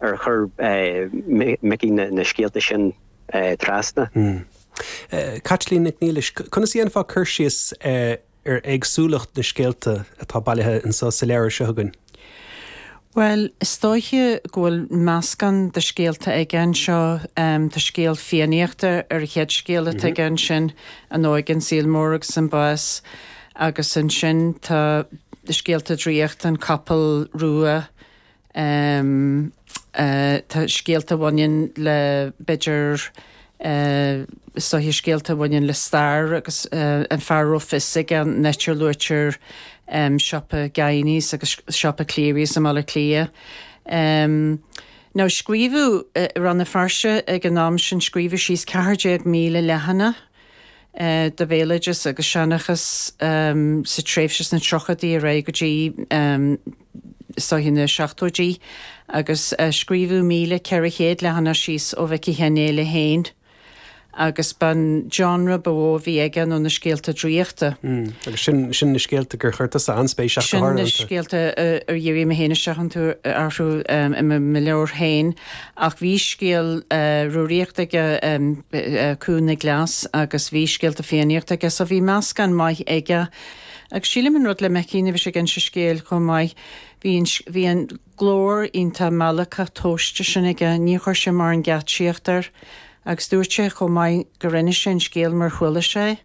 Ar chuir Micí na scéalta sin trasna? Caitlín Nic Niallais, Conas a dhéanfá cur síos ar éagsúlacht na scéalta atá bailithe insa leabhar so againn? Bhuel, is dóiche go bhfuil meascán de scéalta aige anseo. Tá scéal Fiannaíochta ar an chéad scéal atá aige ansin, An Óige, an Saol Mór agus an Bás. Agus ansin tá scéalta draíochta, An Capall Rua, Tá scéalta a bhaineann le b'fhéidir soithigh, scéalta a bhaineann le stair agus an fear a raibh fios aige, an áit a luaitear siopa Guineys agus siopa Clerys i mBaile Átha Cliath. Now scríobhadh i Rann na Feirste ag an am sin scríobhadh síos 14,000 leathana. de bhéaloideas agus seanchas sa tréimhse sna tríochaidí ar aghaidh go dtí na seachtóidí agus scríobhadh míle ceithre chéad leathanach síos ó Mhicí Sheáin Néill féin agus ba an genre ba mhó a bhí aige nó na scéalta draíochta. Agus sin na scéalta gur chuir tusa an-spéis ach go háirithe iontu? Sin na scéalta ar dhírigh mé féin isteach iontu, orthu i mo leabhar féin. Ach bhí scéal Rúraíochta aige, Cú na gCleas, agus bhí scéalta Fiannaíochta aige, so bhí meascán maith aige. Agus sílim an rud le Micí nuair a bhí sé ag inse scéil chomh maith, bhí an, bhí an glór iontach meallacach tomhaiste sin aige, níor chuir sé mórán geáitsíocht air. Agus dúirt sé chomh maith gur inis sé an scéal mar chuala sé.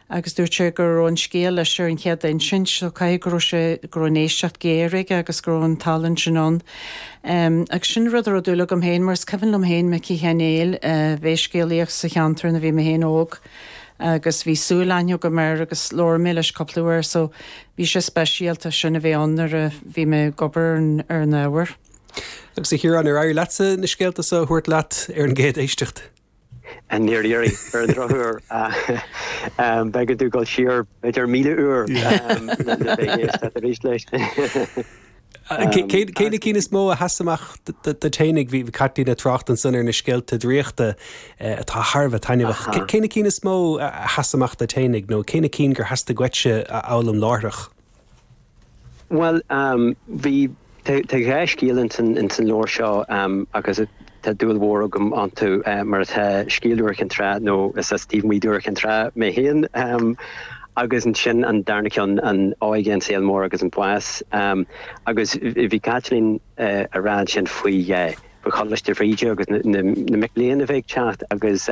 agus dúirt sé go raibh an scéal leis ar an chéad insint so caithfidh go raibh sé, go raibh an éisteacht géar aige agus go raibh an tallann sin ann. Agus sin rud a raibh dúil agam féin mar is cuimhin liom féin Micí Sheáin Néill a bheith ag scéalaíocht sa cheantar nuair a bhí mé féin óg agus bhí súilaithne agam air agus labhair mé leis cúpla uair so bhí sé speisialta sin a bheith ann nuair a bhí mé ag obair ar an, ar an ábhar. Agus a Chiaráin, ar éirigh leatsa na scéalta so a thabhairt leat ar an gcéad éisteacht? Á, níor éirigh, ar an drochuair, b'éigean dul siar b'fhéidir míle uair le bheith ag éisteacht arís leis. Cé na cinn is mó a sheas amach do t'aonaigh? Bhí Caitlín ag trácht ansan ar na scéalta draíochta atá thar a bheith taitneamhach. Cé na cinn is mó a sheas amach duit féinig nó cé na cinn gur theastaigh uait a fhoghlaim láithreach? Bhuel, bhí, tá dhá scéal ins an leabhar seo agus tá dúil mhór agam iontu, mar atá, scéal Iúr Chinn Trá, nó is as taobh amuigh d'Iúr Chinn Trá mé féin, agus ansin an darna ceann, an óige, an saol mór agus an bás. Agus bhí Caitlín a' rá ansin faoi Choláiste Bhríde agus na mic léinn a bheith ag teacht agus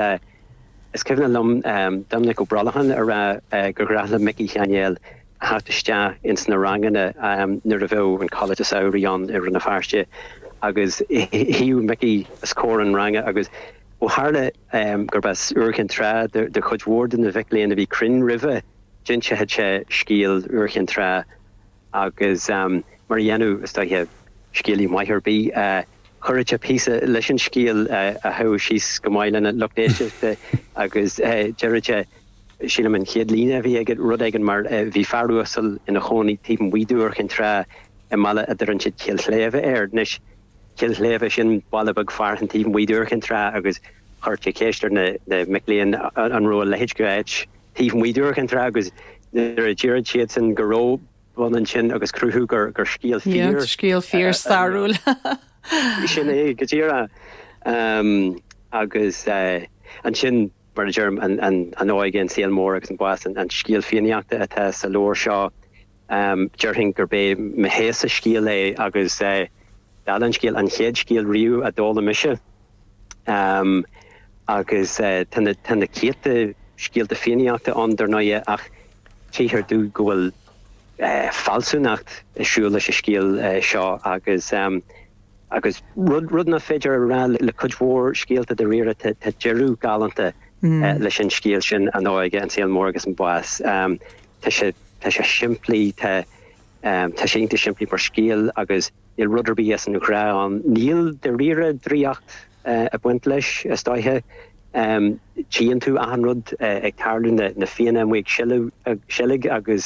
is cuimhneach liom Doiminic Ó Brolcháin a' rá gur ghnách le Micí Sheáin Néill a theacht isteach ins na ranganna nuair a bheadh an coláiste samhraidh ann i Rann na Feirste agus shuidheadh Micí os comhair an ranga agus ó tharla gurb as Iúr Chinn Trá de chuid mhór de na mhic léinn a bhí cruinn roimhe d'inseochadh sé scéal Iúr Chinn Trá agus mar a dhéanadh is dóiche scéalaí maith ar bith chuireadh sé píosa leis an scéal a rachadh síos go maith lena lucht éisteachta agus deireadh sé. Sílim an chéad líne a bhí aige rud éigin mar Bhí fear uasal ina chónaí taobh amuigh d'Iúr Chinn Trá i mbaile a dtugann siad Cill Shléibhe air. Anois Cill Shléibhe sin baile beag fearainn taobh amuigh d'Iúr Chinn Trá agus chuir sé ceist ar na mic léinn an raibh a leithéid de áit taobh amuigh d'Iúr Chinn Trá agus nuair a déarfadh siadsan go raibh b'ionann sin agus cruthú gur scéal fíor Scéal fíor stairiúil ann. Sin é go díreach agus ansin Mar a deirim, an óige, an saol mór agus an bás an scéal Fiannaíochta atá sa leabhar seo. Déarfainn gurb é mo sheó-sa scéal é agus dála an scéil, an chéad scéal riamh a d'fhoghlaim mise. Agus tá na céadta scéalta Fiannaíochta ann, dar ndóighe, ach tchíthear domh go bhfuil fealsúnacht ag siúl leis an scéal seo agus. Agus rud nach féidir a rá le cuid mhór scéalta dáiríre, tá deireadh galánta leis an scéal sin, an óige, an saol mór agus an bás. Tá sé simplí, tá sé iontach simplí mar scéal agus níl rud ar bith as an ghnách ann. Níl dáiríre draíocht ag baint leis, is dóiche. Tchíonn tú achan rud ag tarlú, na Fianna amuigh ag seilg agus.